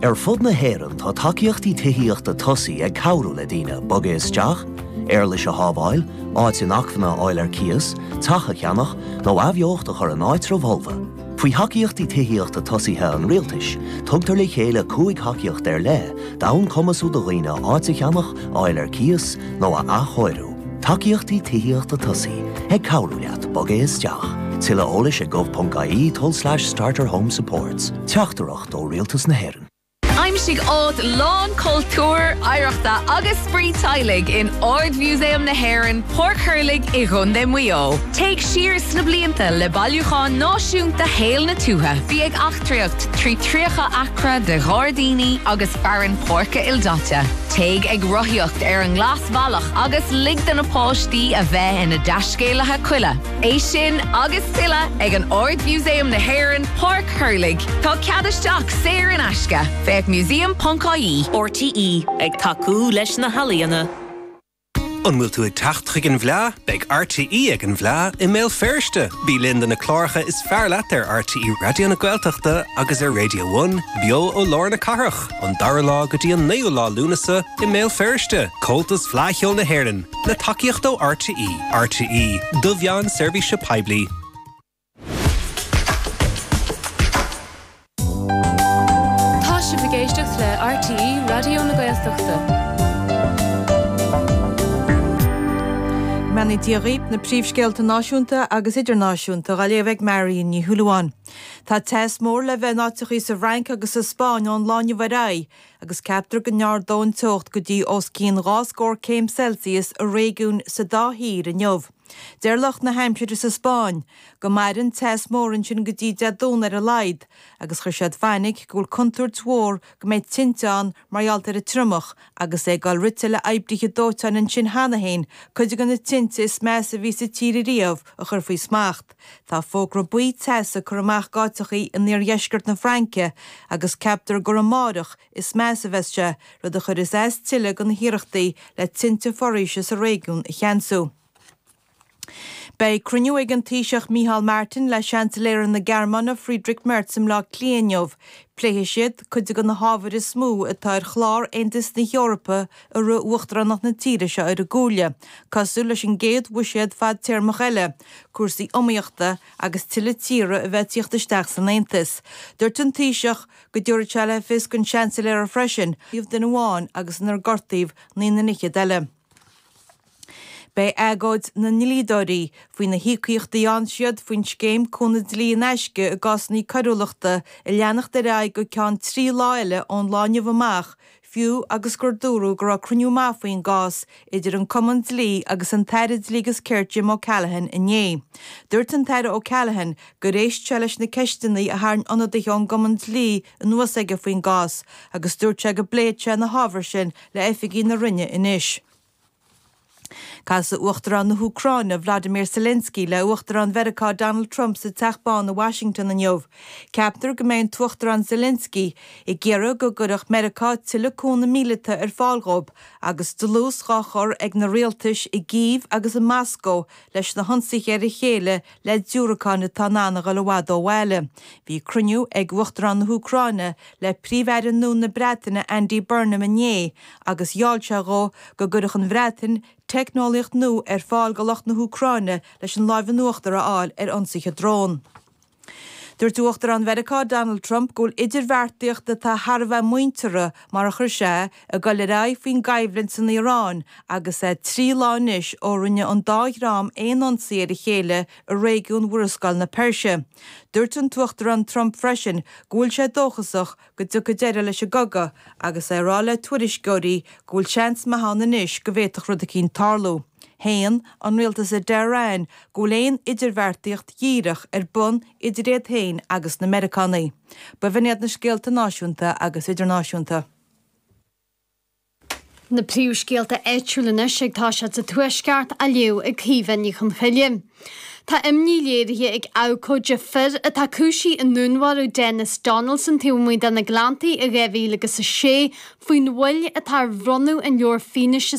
Ar fud na hÉireann tá tacaíochtaí tithíochta tosaigh ag cabhrú le daoine bogadh isteach, éarlais a shábháil, áit inacmhainne a fháil ar cíos, teach a cheannach, nó athbheocht a chur in áitreabh folamh. Faoi Thacaíochtaí Tithíochta Tosaigh an Rialtais, tugtar le chéile cúig thacaíocht ar leith d'fhonn cumasú do dhaoine áit a cheannach, a fháil ar cíos, nó a athchóiriú. Tacaíochtaí Tithíochta Tosaigh ag cabhrú leat bogadh isteach. Tuilleadh eolais ag gov.ie tulslais starterhomesupports. Teachtaireacht ó Rialtas na hÉireann. Aimsigh áit lán cultúir, oidhreachta agus spraoi teaghlaigh in Ard-Mhúsaem na hÉireann, Páirc Thurlaigh i gContae Mhaigh Eo. Téigh siar sna blianta le Bailiúchán Náisiúnta Shaol na Tuaithe. Bí ag eachtraíocht trí 30 acra de ghairdíní agus fearann páirce ildaite. Téigh ag rothaíocht ar an nglas. bhealach agus lig do na páistí a bheith ina dtaiscéalaithe coille. É sin agus tuilleadh ag Ard-Mhúsaem na hÉireann, Páirc Thurlaigh. Tá cead isteach saor in aisce, féach museum.ie. RTÉ ag tacú leis na healaíona. An bhfuil tú ag teacht chuig an bhFleadh? Beidh RTÉ ag an bhFleadh i mBéal Feirste! Bí linn do na cláracha is fearr leat ar RTÉ Raidió na Gaeltachta agus ar Radio One, beo ó lár na cathrach. Ón dara lá go dtí an naoú lá Lúnasa i mBéal Feirste, Comhaltas Fleadh Cheoil na hÉireann, le tacaíocht ó RTÉ. RTÉ, do mheáin seirbhíse poiblí. Tá sibh ag éisteacht le RTÉ Raidió na Gaeltachta. Go mbeannaí Dia dhaoibh na príomhscéalta náisiúnta agus idirnáisiúnta dá léamh ag Marion Ní Shúilleabháin. Tá teas mór le bheith in áiteachaí sa bhFrainc agus sa Spáinn ón lá inniu ar aghaidh agus ceaptar go n-ardóidh an teocht go dtí os cionn dhá scór céim Celsius i réigiúin sa dá thír inniu. Deir lucht na haimsire sa Spáinn go mairfidh an teas mór ansin go dtí Dé Domhnaigh ar a laghad agus chuir siad fainic go bhfuil contúirt mhór go mbeidh tinte ann mar gheall ar an triomach agus é ag dul rite le oibrithe dóiteáin ansin cheana féin cuid de na tinte is measa a bhí sa tír riamh a chur faoi smacht. Tá fógra buí teas curtha amach d'áiteachaí in iardheisceart na Fraince agus ceaptar gur amáireach is measa a bheas sé, rud a chuireas as tuilleadh do na hiarrachtaí le tinte foraoise sa réigiún a cheansú. Beidh cruinniú ag an Taoiseach Micheál Martin le Seansailéara na Gearmáine Friedrich Merz i mBleá Cliath inniu. Pléifidh siad cuid de na hábhair is mó atá ar chlár Aontas na hEorpa i rith uachtaránacht na tíre seo ar an gComhairle, cosúil leis an gcéad bhuiséad fadtéarmach eile, cúrsaí iomaíochta agus tuilleadh tíortha a bheith ag tíocht isteach san Aontas. Duirt an Taoiseach go dtabharfaidh sé le fios don Seansailéara freisin iomh duine amháin agus inar gortaíodh naoi na fhichead eile. Beidh agóid na ndlíodóirí faoi na híocaíochtaí a fhaigheann siad faoin scéim cúnamh dlí in aisce i gcásanna coiriúlachta ag leanacht ar aghaidh go ceann trí lá eile ón lá inniu amach, fiú agus gur dúradh go raibh cruinniú maith faoin gcás idir an Cumann Dlí agus an tAire Dlí agus Cirt Jim O'Callaghan inné. Dúirt an tAire O'Callaghan gur éist sé leis na ceisteanna a tharraing ionadaithe ón Cumann Dlí anuas aige faoin gcás agus dúirt sé go bpléifidh sé na hábhair sin le oifigigh na Roinne anois. Casadh Uachtarán na hÚcráine, Vladimir Zelensky, le hUachtarán Mheiriceá Donald Trump sa Teach Bán i Washington inniu. Ceaptar go mbeidh an tUachtarán Zelensky ag iarraidh go gcuirfeadh Meiriceá tuilleadh cúnamh míleata ar fáil dhóibh agus dlús dhá chur ag na rialtais i gCív agus i Moscó leis na hionsaithe ar a chéile le diúracáin atá in ann a dhul i bhfad ó bhaile. Bhí cruinniú ag Uachtarán na hÚcráine le Príomh-Aire nua na Breataine Andy Burnham inné agus gheall sé dhó go gcuirfeadh an Bhreatain teicneolaíocht nua ar fáil do lucht na hÚcráine leis an lámh in uachtar a fháil ar ionsaithe drón. Dúirt Uachtarán Mheiriceá Donald Trump go bhfuil idirbheartaíocht atá thar a bheith muinteartha mar a chuir sé é Ag dul ar aghaidh faoin gcoimhlint san Iaráin agus é trí lá anois ó rinne an dá dhream aon ionsaí ar a chéile i réigiún Mhurascaill na Peirse. Dúirt an tUachtarán Trump freisin go bhfuil sé dóchasach go dtiocfaidh deireadh leis an gcogadh agus é ag rá le tuairisceoirí go bhfuil seans maith ann anois go bhféadfadh rud eicínt tarlú. Shéan an rialtas i dTehran go bhfuil aon idirbheartaíocht dhíreach ar bun idir iad féin agus na Meiriceánaigh. Ba 'in iad na scéalta náisiúnta agus idirnáisiúnta. Na príomhscéalta áitiúil anois agus tá siad sa Tuaisceart á léamh ag Caoimhe Ní Chonchoille. Tá imní léirithe ag abhcóide fir atá cúisithe i ndúnmharú Denis Donaldson taobh amuigh de na Gleanntaí i 2006 faoin mhoill atá ar bhronnadh an leabhair fianaise